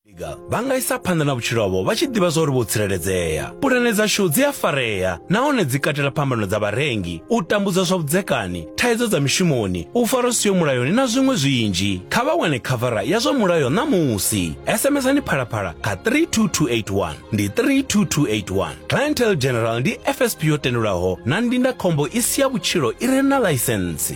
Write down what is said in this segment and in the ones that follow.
Vhiga, Vha nga isa phanḓa na vhutshilo havho vha tshi ḓivha zwa uri vho tsireledzea. Pulane dzashu dzi a farea nahone dzi katela phambano dza vharengi, u tambudzwa zwa vhudzekani, thaidzo dza mishumoni, u farwa siho mulayoni na zwiṅwe zwinzhi. Kha vha wane khavara ya zwa mulayo ṋamusi. SMSani Phalaphala kha 32281. Ndi 32281. Clientele General ndi FSP yo tendelwaho na ndindakhombo i si ya vhutshilo i re na ḽaisentsi.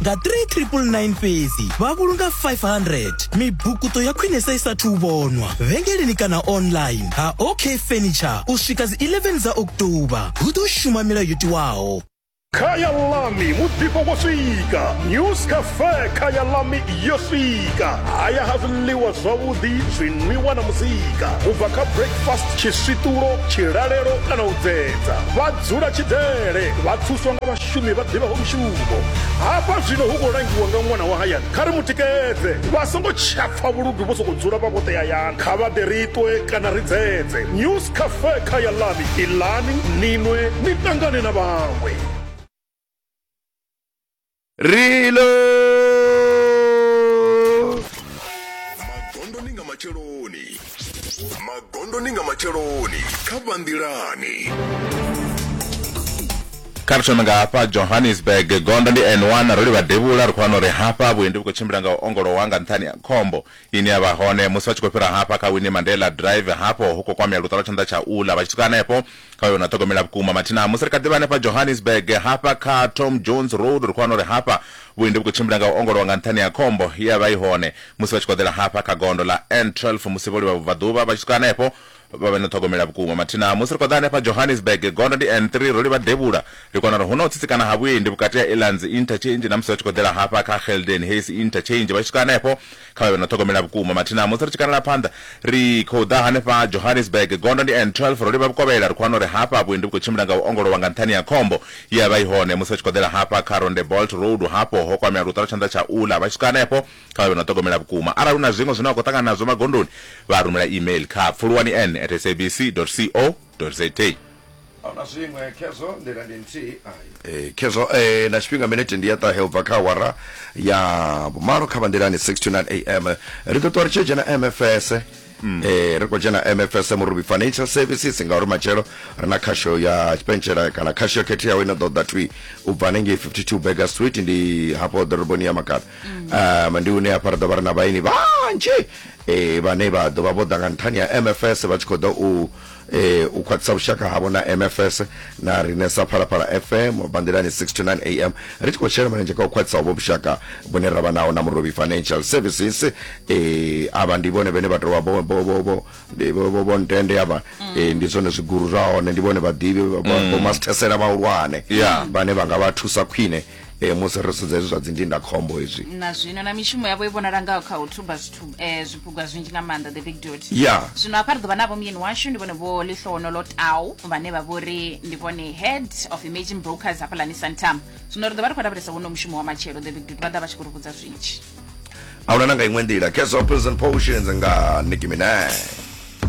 nga 3999 fhedzi vha vhulunga 500 mibukuto ya khwinesa i sathu vhonwa vhengeleni kana online ha ok furniture u swika dzi 11 dza oktoba hu ḓo shuma milayo yo tiwaho Kaya Lami mudzipo wo swika News Cafe Kaya Lami yo swika haya ha zwiḽiwa zwavhuḓi zwinwiwa na muzika u bva kha breakfast tshiswiṱulo tshilalelo kana u dzedza vha dzula tshidele vha thuswa nga vhashumi vhashumi vha ḓivhaho mushumo hafha zwino hu khou langiwa nga ṅwana wa hayani kha ri mu tikedze vha songo tshapfa vhuludu vho sokou dzula vha vhoṱe hayani kha vha ḓe ri ṱwe kana ri dzedze news cafe kha ya lani ilani ninwe ni ṱangane na vhaṅwe rilo magondoni nga matsheloni magondoni nga matsheloni kha vhanḓilani kha ri thome nga hafha johannesburg gondo ndi n1 ro livha devhula ri khou wana uri hafha vhuendi vhu khou tshimbila nga u ongolowa nga nṱhani ha khombo ine ya vha hone musi vha tshi khou fhira hafha kha wini mandela drive hafho hu khou kwamea luṱa lwa tshanḓa tsha ula vha tshi swika hanefho hoyo na ṱhogomela vhukuma mathina musi ri kha ḓivha hanefha johannesburg hafha kha tom jones road ri khou wana uri hafha vhuendi vhu khou tshimbila nga u ongolowa nga nṱhani ha khombo ye ya vha i hone musi vha tshi koḓela hafha kha gondo ḽa n12 musi vho livha vhubvaḓuvha vha tshi swika hanefho vha vhe na ṱhogomela vhukuma mathina musi ri khou ḓa hanefha johannesburg gondo ndi n3 ro livha devhula ri kona uri hu na u tsitsikana ha vhuendi vhukati ha elands interchange na musi vha tshi koḓela hafha kha helden hayes interchange vha tshi swika hanefho Kha vhe vhe no ṱhogomela vhukuma mathina musi ri tshi kanela phanḓa ri khou ḓa hanefha Johannesburg. Gondo ndi N12, ro livha vhukovhela, ri khou wana uri hafha vhuendi vhu khou tshimbila nga u ongolowa nga nṱhani ha khombo ye ya vha i hone musi vha tshi khou ḓela hafha kha Rondebolt Road. Hafho ho kwamea luṱo lwa tshanḓa tsha uḽa vha tshi swika hanefho. Kha vhe vhe no ṱhogomela vhukuma. Arali hu na zwiṅwe zwine wa khou ṱangana nazwo magondoni, vha rumela email kha pfuluwani-n at sabc dot co. za ahuna zwiṅwe khezwo nḓila ndi nthihi eh, khezwo eh, na tshifhinga minete ndi ya ṱahe ubva kha awara ya vhumalo kha vanḓilani 6 to 9 am ri ḓo ṱuwa ri tshi dzhena mfs Mm. eh ri khou dzhena mfs murubi financial services ngauri matshelo ri na khasho ya tshipentshela kana khasho yo khetheaho ine ḓo ḓa twi u bva hanengei 52 burger street ndi hafho ḓoroboni ya makala mm. um ndi hune hafha ri ḓo vha ri na vhaini vhanzhi e, vhane vha ḓo vha vho ḓa nga nṱhani ha mfs vha tshi khou ḓa u e, u khwaṱhisa vhushaka havho na mfs na rine sa phalaphala fm banḓilani 6 to 9 am ri tshi khou shela mulenzhe kha u khwaṱhisa hovho vhushaka vhune ra vha naho na murobi financial services e, avha ndi vhone vhene vha tou vha vho- vho- vho- vho- ndi- vho- vho- vho ntende avha e, ndi zwone zwiguru zwa hone ndi vhone vhaḓivhi vho mastesela vhahulwane Yeah. vhane vha nga vha thusa khwine e, musi ro sedza hezwi zwa dzindindakhombo hezwi na zwino na mishumo yavho i vhonala ngaho kha u thuba zwithu eh, zwiphuga zwinzhi nga maanḓa the big dot ya zwino hafha ri ḓo vha navho muyeni washu ndi vhone vho ḽihlono lo tau vhane vha vho ri ndi vhone head of emerging brokers hafhaḽani santam zwino ri ḓo vha ri khou lavhelesa wono mushumo wa matshelo the big dot vha ḓa vha tshi khou ri vhudza zwinzhi ahuna na nga iṅwe nḓila keso prison potions nga nicki minaj